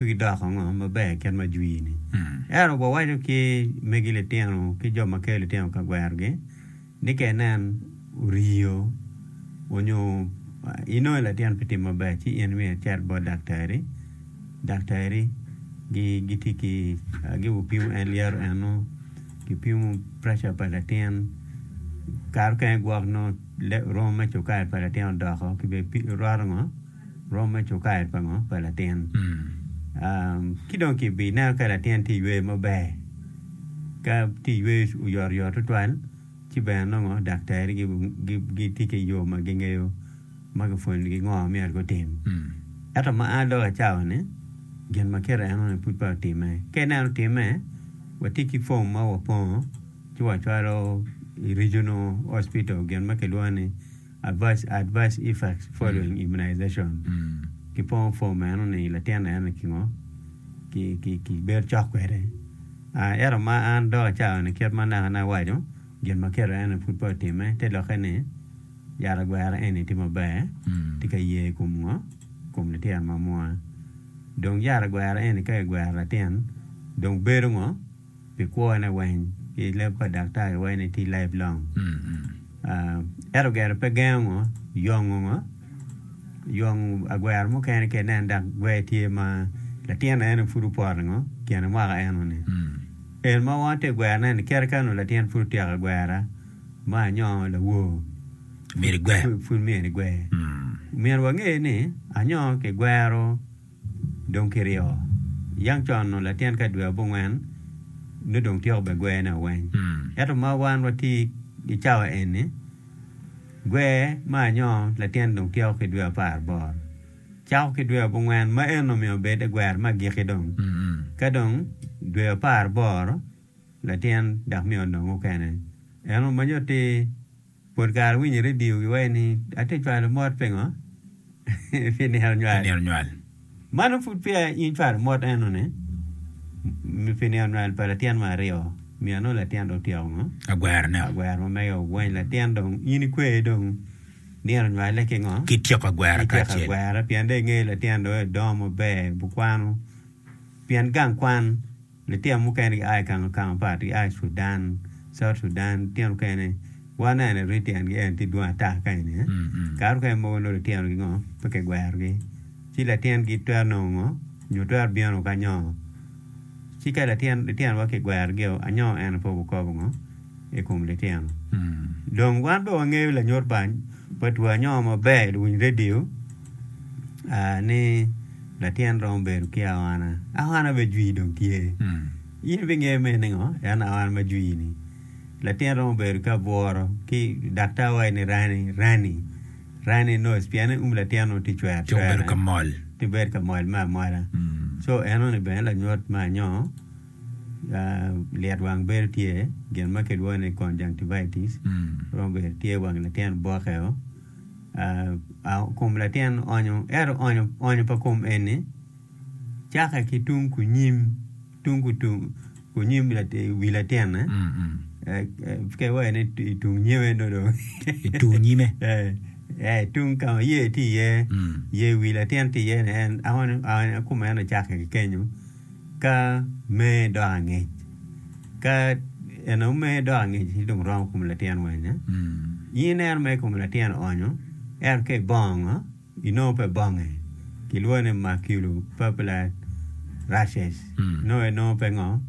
Megi doko ango maber kit ma jwini? Ento wawaco ki megi litino ki jo ma kelo litino ka gwerogi ni ka inen oriyo onyo inongo latin pe tye maber ci in myero icit bot daktari. Daktari gitye ki gupimo en lyeto eno, gipimo pressure pa latin kare mukene gwok nongo romo me cukari pa latin odoko ki bene roto ngo. rom me cukair pa ngo? Pa latin. Ci dong ki bi neno ka latin tye yweyo maber, ka tye yweyo oyot oyot tutwal ci bene nongo daktari gitye ki yo ma gingeyo ma gipwonyo gi ngo ma myero gutim. Ento ma a lok acawa ni gin ma kit eno ni pud peya otime. Ka ineno otime, watye ki form ma wapongo ci wacwalo i regional hospital gin ma kilwongo ni. Advise, I advise Ifax following immunization. Kipongo form meno ni latin en ni kingo ki ki ki bedo cok kwede. Ah, ento ma an dok acayo ni kit ma naka ne awaco, gin ma kelo en ni pud pe otime, te lokke ni yat agwera eni tye maber, tye ka ye i kom ngo? I kom litino ma mwa. Dong yat agwera eni ka ki gwero latin, dong bedo ngo? pi kwone weng ki leb pa daktari wai ni tye life long ento gire pe gengo ngo yongo ngo yong agwero mukene ki nen dok gwer tye ma latin eno pud opoto ngo kine mwaka eno ni en ma wongo tye gwer ne ni kite kano latin pud otyeko agwera ma nyo lawor pud myero igwer myero wange ni anyo kigwero Dong kiryo yang con onongo latin ka i dwe abongwen nongo dong tyeko bene gwer ne weng. Ento ma wan watye i cawa eni gwer ma anyoo latin dong tyeko ki dwe apar boro cako ki dwe abongwen ma eno myero obed gwer ma agiki dong ka dong dwe apar boro latin dok myero onong mukene eno manyo atir. Pol kare awinyo i redio giwaco ni atye ka cwalo mot pingo? Pi nino nywal. Mano pud peya in icwalo mot enoni pi nino nywal pa latin mo aryo. Omiyo nongo latin dong otyeko ngo? Agwerone-o. Agwero ma mege owony latin dong in ikwer dong nino nywale ki ngo? Ki tyeko agwera Ki tyeko kacel. agwera pien dong ingeyo latin dong edongo maber, obikwano pien gang kwan. Litino mukene gia i kang okang mapat, gia i Sudan, South Sudan, litino mukene waneno en rii tyen gi en tye dwong ata kany ni eh, kare mukene mogo nongo litino gi ngo pe ki gwero gi, ci latin gi twero nongo ngo nyo twero bino ki anyo, ci ka latin litino wa ki gwero gi o anyo eno pe wukobo ngo i kom litino, dong wan pe wangeyo lanyut pa pa two anyo maber luwiny radio. ni latin romo bedo ki awana. Awana bene jwi dong tye. In ibingeyo me ni ngo en awana ma jwi-ni. Latin romo bedo ki abworo ki daktar waco ni rani rani rani nurse pienni um latin onongo tye cwer cwer. Ci obedo ka mol. Tye bedo ka mol me amola. Co enoni bene lanyut me anyongo ah, lyet wang bedo tye gin ma kilwongo ni conjunctivitis romo bedo tye wang latin boke-o. kom latin onyo ento onyo pa kom eni cake ki tung kunyim tung kunyim wi latinne pe wai ni itung nyime do dong itung nyime ee tung ka ma iye tye iye yer wi latin tye iye ni en onyo kome en ocake ki kenyo Ka mee dok angec, ka en aye mee dok angec ci dong romo kom latin wanya. In ineno mere kom latin onyo, ento ka ibongo ngo, inongo pe bonge. Kilwongo ni maculopapular rashes. Nongo en nongo pe ngo,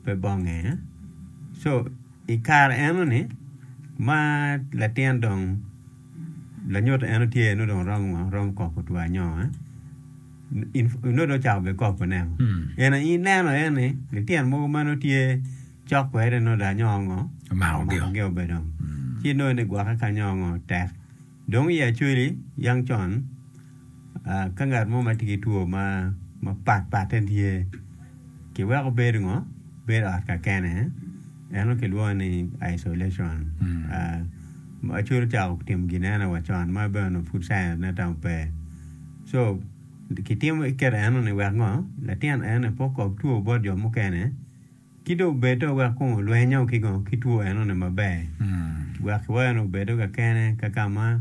pe bonge. So i kare eno ni ma latin dong lanyut eno tye nongo dong romo ngo, romo koko two anyongo. En aye ineno aye ni lityen mogo ma nongo tye cok kwede nongo lanyo ngo omakogi be dong ci inongo ni gwokke ki anyo ngo tek dong i Acholi yang con ka ngat mo ma tye ki two mapat patte tye kiweko bedo ngo bedo ot kakene eno kilwongo ni isolation Acholi ocako timo gin eno wa con ma bene onongo pud science ne tamo pe. So, kitimo kit enoni wek ngo? Latin enoni pe okok two bot jo mukene, ki dong obedo wek kong olwenyo ki ngo? Ki two enoni maber. Wek kiwayo ni obedo kakene kaka ma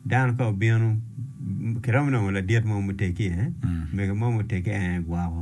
dano ka obino, kiromo nongo ladit mo muteggi, mege mo muteggi en aye gwoko.